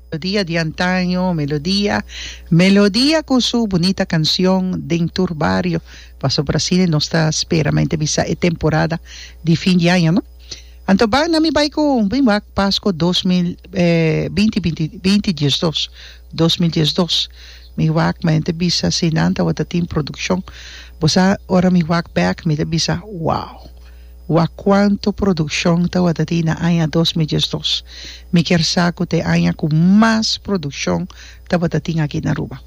Melodia di antaño, melodia, melodia cu su bunita cancion den tur bario. Pasobra asina nos ta spera mente bisa e temporada di fin di aña, no? Anto ban na mi bay cu mi wak Pasco dos mil binti binti binti diesdos, dos mil diesdos. Mi wak mente bisa asina tawata tin produccion. Bo sa ora mi wak bek mi ta bisa wow. Wak kuantu produkshon tawatati na aña dos mi diesdos. Mi kier sa ku ta e aña ku mas produkshon tabatatin aki na Aruba.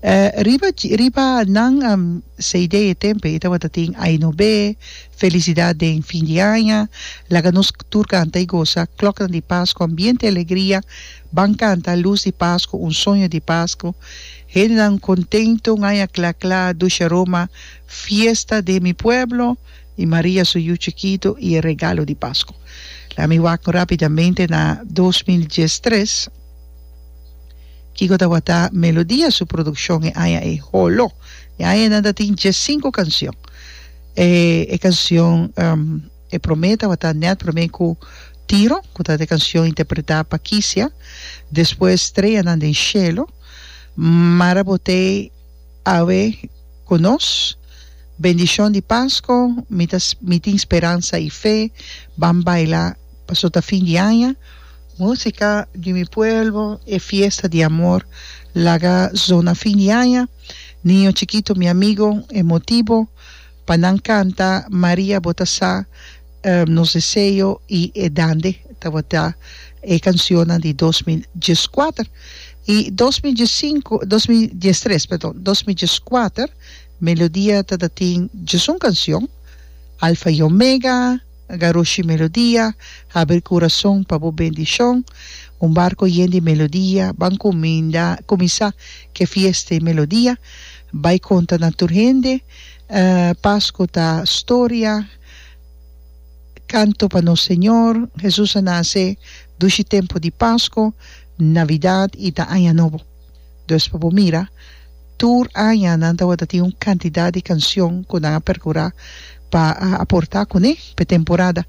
E riba riba nan CD e tempe e tabatatin Ai no be, Felicidad den fin di aña, Laga nos tur kanta i gosa, Kloknan di Pasku, Ambiente i Alegria, Ban kanta, Lus di Pasku, Un soño di Pasku, Hendenan kontentu, Un aña kla kla, Dushe Roma, Fiesta den mi pueblo, y Maria su yu chikito y e regalo di Pasco. Lami wak rapidamente na dos mil dies tres. Kiko tawata Melodia su produccion e aña ei? Holo! E aña ei nan ta tin dies cinco cancion. E e cancion e prome tawata Net prome cu Tiro, cu ta e cancion interpreta pa Kisia, despues Streanan den Cielo, Mara Botey, Awe ku nos bendishon di Pasko mi ta mi tin speransa i fe ban baila paso ta fin di aña. Musika di mi pueblo e fiesta di amor laga zona fin di aña niño chikito mi amigo e motibo. Pa nan canta Maria bo ta sa Nos deseo y e dande tabata e cancionnan di dos mil dieskuater y dos mil diesinko dos mil diestres perdon dos mil dieskuater Melodia ta ta tin diesun cancion Alfa y Omega Garoshi Melodia Habri Curason pa bo bendicion Un barco yen di melodia Ban cuminda cuminsa ke fiesta e melodia Bay conta na tur hende. Pascu ta storia, canto pa nos Señor, Jesus a nace dushi tempo di Pascu, Navidad y ta Aña Nobo. Dos pa bo mira, tur aña nan tawata tin un cantidad di cancion cu nan a percura pa aporta cune pe temporada.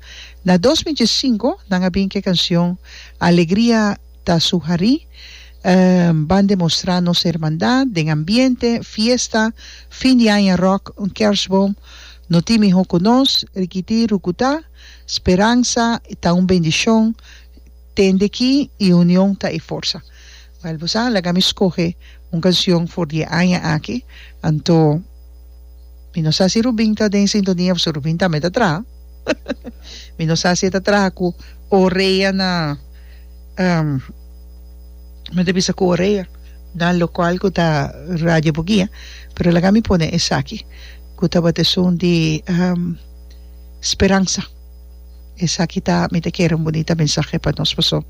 Na dos mil diesinco nan a bin cu e cancion Alegria. Ta suharí ban demostrá nos hermandat den ambiente, fiesta, fin di aña ròk, un kèrstbom. No tin mihó ku nos, rikití rukutá. Speransa ta un bendishon, tende ki i union ta e forsa. Wèl, bo sa laga mi skohe un kansion for di e aña aki, anto mi no sa si Rubin ta den sintonia pasobra Rubin tambe ta traha. Mi no sa si e ta traha ku Orea na. mi ta bisa cu Orea na lo cual cu ta Radio Bugia pero laga mi pone esaki cu tabata esun di Speransa esaki ta mi ta kere un bunita mensahe pa nos paso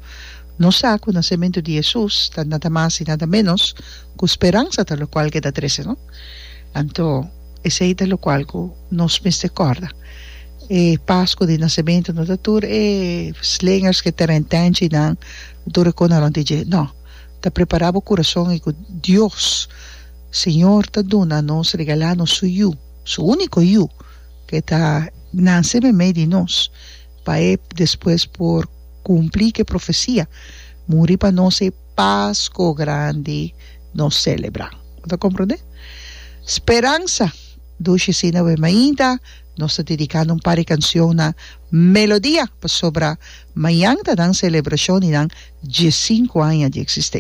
no sa cu nacementu di Jesus ta nada mas y nada menos cu speransa ta lo cual ke ta trece no anto esey ta lo cual cu nos mester corda. E Pasku di Nasementu no ta tur e slingers ku e terentènchinan tur e konaron di dje. No. Ta prepará bo kurason i ku Dios, Señor, ta duna nos, regalá nos Su Yu, Su úniko Yu, ke ta nase meimei di nos, pa E despues por kumplí ke profesia, muri pa nos e Pasku Grandi nos selebrá. Bo ta komprondé? Speransa dushi asina awor, mainta. Nos ta dediká nan par di kanshon na Melodia pasobra mañan ta nan selebrashon di nan diesinku aña di eksisten.